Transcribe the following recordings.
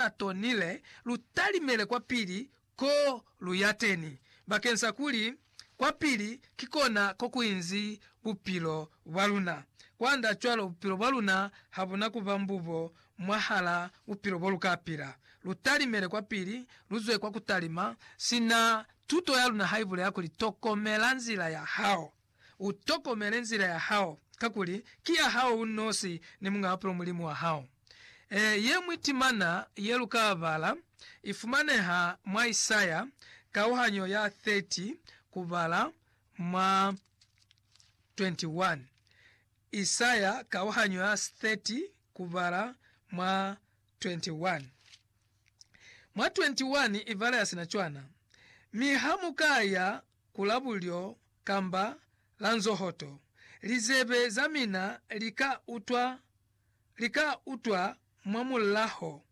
a tonile lu talimele kwa pili ko lu ya teni, bakeng sa kuli kwa pili ki kona ko ku inzi bupilo bwa luna. Kwand'a cwalo bupilo bwa luna ha bu na ku ba mbubo mwahal'a bupilo bo lu ka pila. Lu talimele kwa pili, lu zwe kwa ku talima, sina tuto ya luna ha i bulela kuli, Tokomela nzila ya hao. U tokomele nzila ya hao, kakuli ki ya hao u nosi ni Muñ'a Bupilo Mulimu wa hao. Ee, ye ñwi timana ye lu ka bala i fumaneha mwa Isaya kauhanyo ya 30 kubala mwa 21. Isaya kauhanyo ya 30 kubala mwa 21. Mwa 21 i bala ya sina cwana, Mi ha mu ka ya ku la bulyo kamba la nzohoto, lizebe za mina li ka utwa, li ka utwa mwa mulaho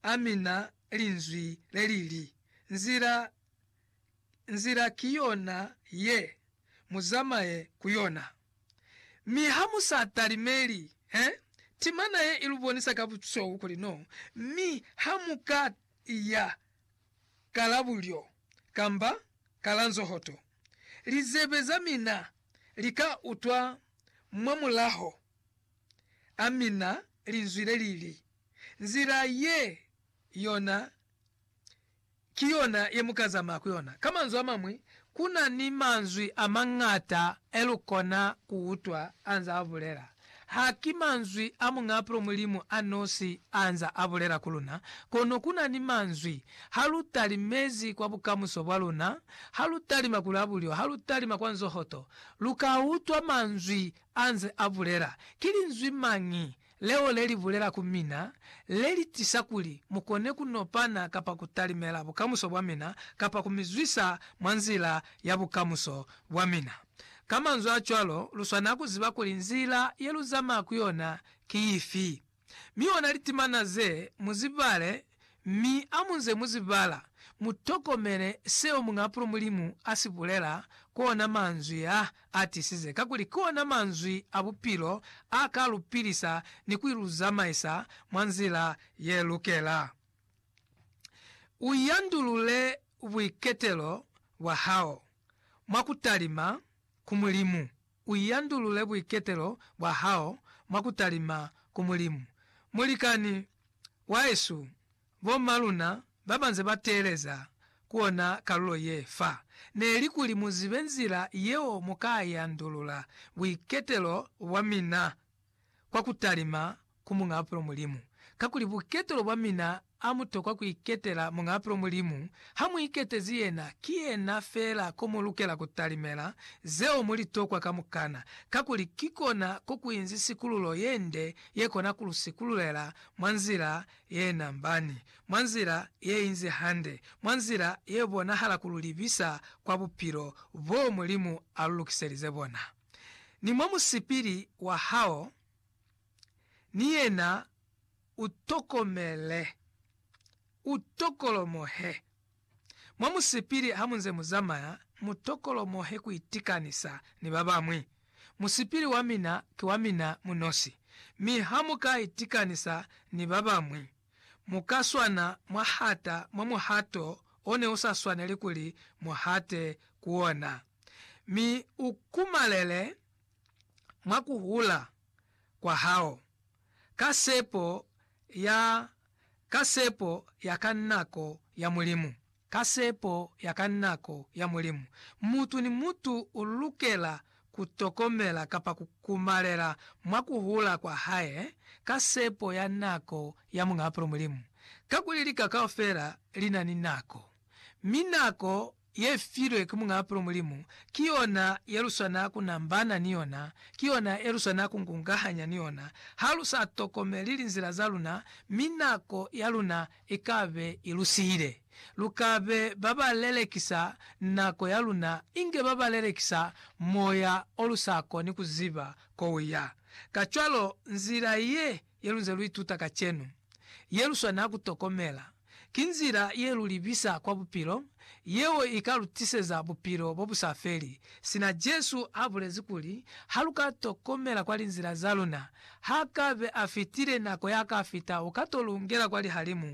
a mina Linzwi le li li, Nzila, nzila ki yona ye, mu zamaye ku yona. Mi ha mu sa talimeli, he, timana ye i lu bonisa ka busweu kuli no, mi ha mu ka i ya ka la bulyo, kamba ka la nzohoto, lizebe za mina li ka utwa mwa mulaho a mina Linzwi le li li, Nzila ye yona ki yona ye mu ka zamaya ku yona. Ka manzwi a mañwi, ku na ni manzwi a mañata e lu kona ku utwa a nzaa bulela. Ha ki manzwi a Muñ'apro Mulimu a nosi a nza a bulela ku luna, kono ku na ni manzwi, Ha lu tali mezi kwa bukamuso bwa luna, ha lu talima ku labulyo, ha lu talima kwa nzohoto, lu ka utwa manzwi a nze a bulela. Ki linzwi mañi leo le li bulela ku mina, le li tisa kuli mu kone ku nopana kapa ku talimela bukamuso bwa mina, kapa ku mi zwisa mwa nzila ya bukamuso bwa mina? Ka manzwi a cwalo, lu swanela ku ziba kuli nzila ye lu zamaya ku yona ki ifi, mi ona litimana ze mu zi bale, mi ha mu nze mu zi bala, mu tokomele seo Muñapulo Mulimu a si bulela, ku ona manzwi a a tisize, kakuli ki ona manzwi a bupilo a ka lu pilisa ni ku lu zamaisa mwa nzila ye lukela. U yandulule buiketelo bwa hao. mwa ku talima ku Mulimu, u yandulule buiketelo bwa hao mwa ku talima ku Mulimu. Mulikani wahesu, bo ma luna ba ba nze ba teeleza ku ona kalulo ye fa, ne li kuli mu zibe nzila yeo mu ka yandulula buiketelo bwa mina kwa ku talima ku Muñaapelo Mulimu, kakuli buketelo bwa mina a mu tokwa ku iketela Muñaapelo Mulimu, ha mu iketezi yena, ki yena feela ko mu lukela ku talimela zeo mu li tokwa kamukana, kakuli ki kona ko ku inzi sikululo ye nde ye kona ku lu sikululela mwa nzila ye nambani, mwa nzila ye inzi hande, mwa nzila ye bonahala ku lu libisa kwa bupilo boo Mulimu a lu lukiselize bona. ni mwa musipili wa hao ni yena u tokomele, u tokolomohe. Mwa musipili ha mu nze mu zamaya, mu tokolomohe ku itikanisa ni ba bañwi. Musipili wa mina ki wa mina mu nosi, mi ha mu ka itikanisa ni ba bañwi, Mu ka swana mwa hata mwa muhato o ne u sa swaneli kuli mu hate ku ona, mi u kumalele mwa ku hula kwa hao, ka sepo ya, ka sepo ya ka nako ya Mulimu. Ka sepo ya ka nako ya Mulimu, mutu ni mutu u lukela ku tokomela kapa ku kumalela mwa ku hula kwa hae ka sepo ya nako ya Muñ'a Apolo Mulimu. Kakuli lika kaufela li na ni nako, mi nako ye filwe ki Muñ'a Apolo Mulimu ki yona ye lu swana ku nambana ni yona, ki yona ye lu swana ku kungahanya ni yona. Ha lu sa tokomeli linzila za luna, mi nako ya luna ikabe i lu sihile. Lu ka be ba ba lelekisa nako ya luna inge ba ba lelekisa moya o lu sa koni ku ziba ko u ya. Kacwalo, nzila ye, ye lu nze lu ituta kacenu, ye lu swanela ku tokomela, ki nzila ye lu libisa kwa bupilo, yeo i ka lu tiseza bupilo bo bu sa feli, sina Jesu a bulezi kuli, Ha lu ka tokomela kwa linzila za luna, ha ka be a fitile nako ya ka fita u ka to lu ngela kwa lihalimu